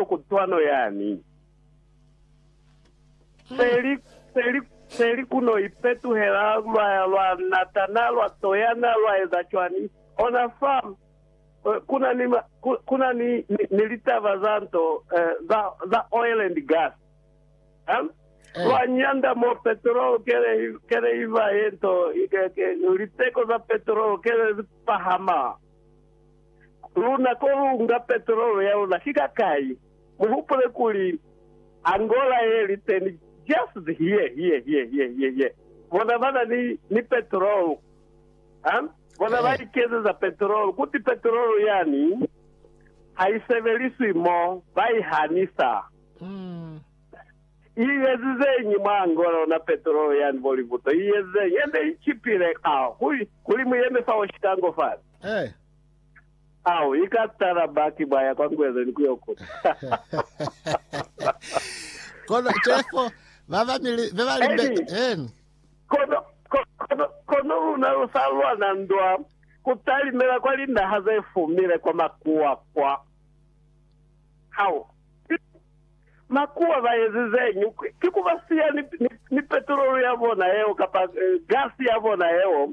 to kutwano yani. Peli, peli, peli ku no ipetuhela lwa ya lwa natana, lwa toyana, lwa eza cwani. Ona fa, eh, ku na ni, ku, ku na ni, ni, ni litaba za nto, eh, za, za oil and gas. Eh? Eh. Lwa nyanda mo petrol kele, kele iva yento, liteko za petrol kele zipahama. Luna ko lu nga petrolo ya luna ki ka kai? Mu hupule kuli, Angola ye li teni just here, here, here, here, here, here. Bona ba na ni, ni petrolo. Ha? Bona ba ikezeza petrolo. Kuti petrolo yani ha i sebeliswi mo, ba i hanisa. I ezizeñi mwa Angola yona petrolo yani, bo libuto? I ezizeñi? Ende i chipile ka, kuli, kuli mu yeme fa Oshikango fale. Eh. Au, i ka tala baki ba ya kwa Ngweleni ku yo kuta. Kono cefo ba bamili be ba limbe. Eni. Eni. Kono, ko- kono, kono luna lu sa lwana ndwa ku talimela kwa linaha ze fumile kwa makuwa kwa. Au. Makuwa ba ezizeñi? Ki ku ba siya ni, ni, ni petrolu ya bona yeo kapa eh, gasi ya bona yeo.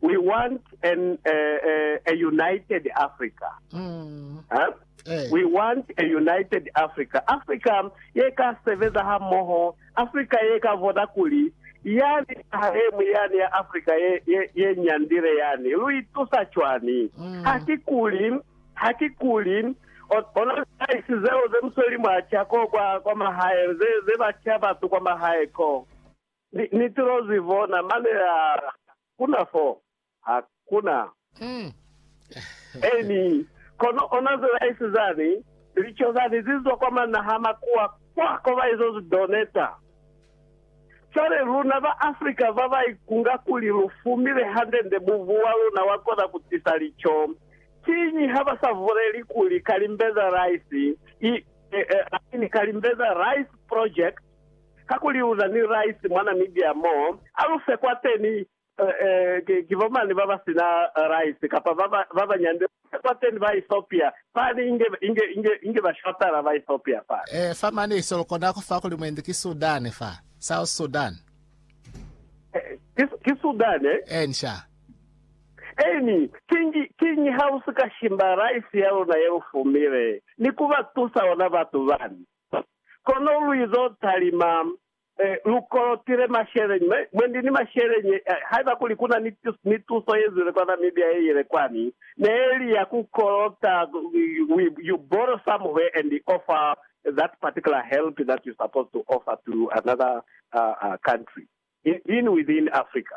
We want an a united Africa huh? We want a united Africa, Africa ye ka sebeza ha moho, Africa ye ka vona kuli yani naha ye ñwi yani ya Africa ye, ye, ye nyandile yani lu itusa cwani? Ha ki kuli, ha ki kuli o, ona lidaisi zeo ze musweli mwa ca ko kwa, kwa mahae, ze, ze ba ca batu kwa mahae ko. Ni, ni tilo zi bona mane ha kuna fo. Ha kuna. Amen. Kono ona ze ba isi zani, lico zani zi zwa kwa manahamakuwa kwa ko ba izo zi doneta. Cwale luna ba Africa ba ba ikunga kuli lu fumile hande nde mubu wa luna wa kona ku tisa lico, kiñi ha ba sa vuleli kuli Kalimbeza Rice, i, i, i mean Kalimbeza Rice Project, Kakuli uza ni rice mwa Namibia mo alufe kwateni ki bomani babasina rice kapa babanyande alufe kwateni ba Ethiopia fani inge ba shotala ba Ethiopia fani. Ee fa mane iso lukona kufa kuli mwendi ki Sudan fa South Sudan. Ki Sudan eh? Eeni sha. Eeni, kiñi, kiñi ha usika shimba rice yaluna yelufumile ni kubatusa ona batu bani? Kono luizo talima e lukolotile masheleñi mwe, mwendi ni masheleñi e. Haiba kuli kuna ni, ni tuso yezwile kwa Namibia yeile kwani, neeli ya ku kolota we, you borrow somewhere and offer that particular help that you supposed to offer to another uh, uh, country, in, in within Africa.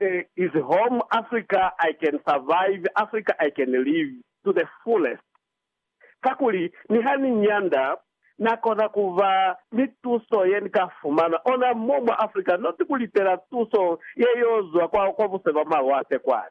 There is home Africa I can survive Africa I can live to the fullest kakuli niha ni nyanda na kona kuba ni tuso ye ni ka fumana ona mo mwa Africa not ku litela tuso ye yo zwa kwa kwa buse bwa malwate kwani.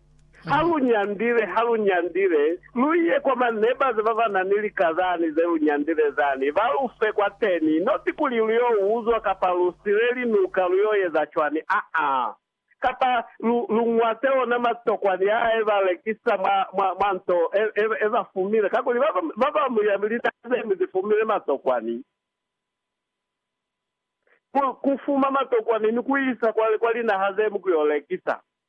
Ha lu nyandile, ha lu nyandile, lu ye kwa manebazi ba ba na ni lika zani ze lu nyandile zani, ba lu fe kwateni. Not kuli lu yo uzwa kapa lu sile linuka, lu yo eza cwani, aa. Kapa lu, lu ñwate ona matokwani aa e ba lekisa mwa, mwa, mwa nto e, e, e ba fumile, kakuli ba, ba ba mu ya linaka ze ñwi zi fumile matokwani. Ku, ku fuma matokwani ni ku isa kwa, kwa linaha ze ñwi ku yo lekisa.